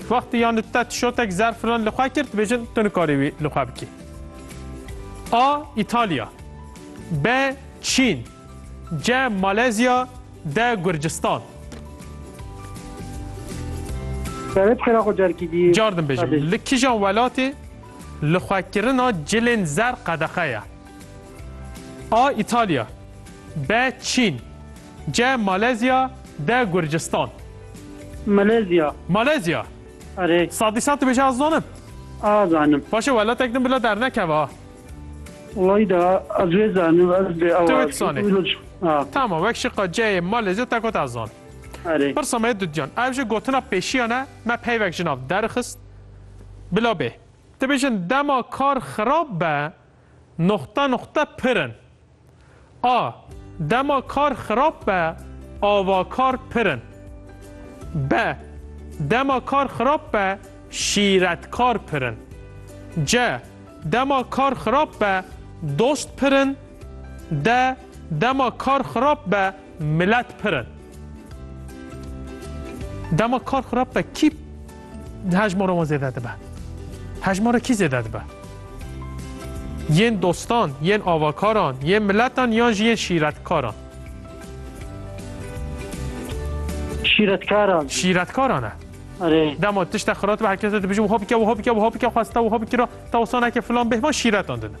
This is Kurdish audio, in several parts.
Wextî yan te tişotek zer filan li xwe kir dibêjin tu nikarî wî li xwe bikî. A. Îtalya B. Çîn C. Malezya D. Gurcistan Serê bi xêra xwe carkî dî. Car din bêjim. Li kîjan welatê li xwekirina cilên zer qedexe ye? A. Îtalya B. Çîn Ce Malezya de Gurcistan. Malezya. Malezya. Arê. Sadî sad dibêje ez zanim. A zanim. Başe welatek din bila dernekeve ha. Welaî da ez wê zanim ez bê ew. Tu wê dizanî. Tamam wek şiqa ceyê Malezya te got ez zanim. Arê. Pirsa me dudyan. Ev ji gotina pêşiyan e me peyvek ji nav derxist. Bila bê. Dibêjin dema kar xirab be noxte noxte pirin. A. Dema kar xirab be avakar pir in. B. Dema kar xirab be şîretkar pir in. C. Dema kar xirab be dost pir in. D. Dema kar xirab be Milet pir in. Dema kar xirab be kî hejmara wan zêde dibe? Hejmara kî zêde dibe? Yên dostan, yên avakaran, yên miletan yan jî yên şîretkaran? Şîretkaran. Şîretkaran e. Erê. Dema tişte xirab dibe herkes dibijin wiha bike wiha bike wiha bike xweste wiha bikira te wisa neke filan bêhman şîretan didin.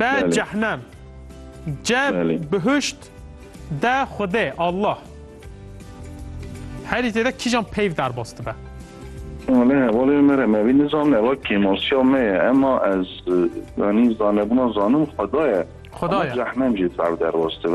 B cehnem C bihişt D xudê Allah Herî têde kîjan peyv derbas dibe? Wale hevalê mere me vî nizam eva kêmosya me ye ema ez yanî zanebûna zanim xwedaye. Xwedaye. Cehnem jî peyv derbas dibe.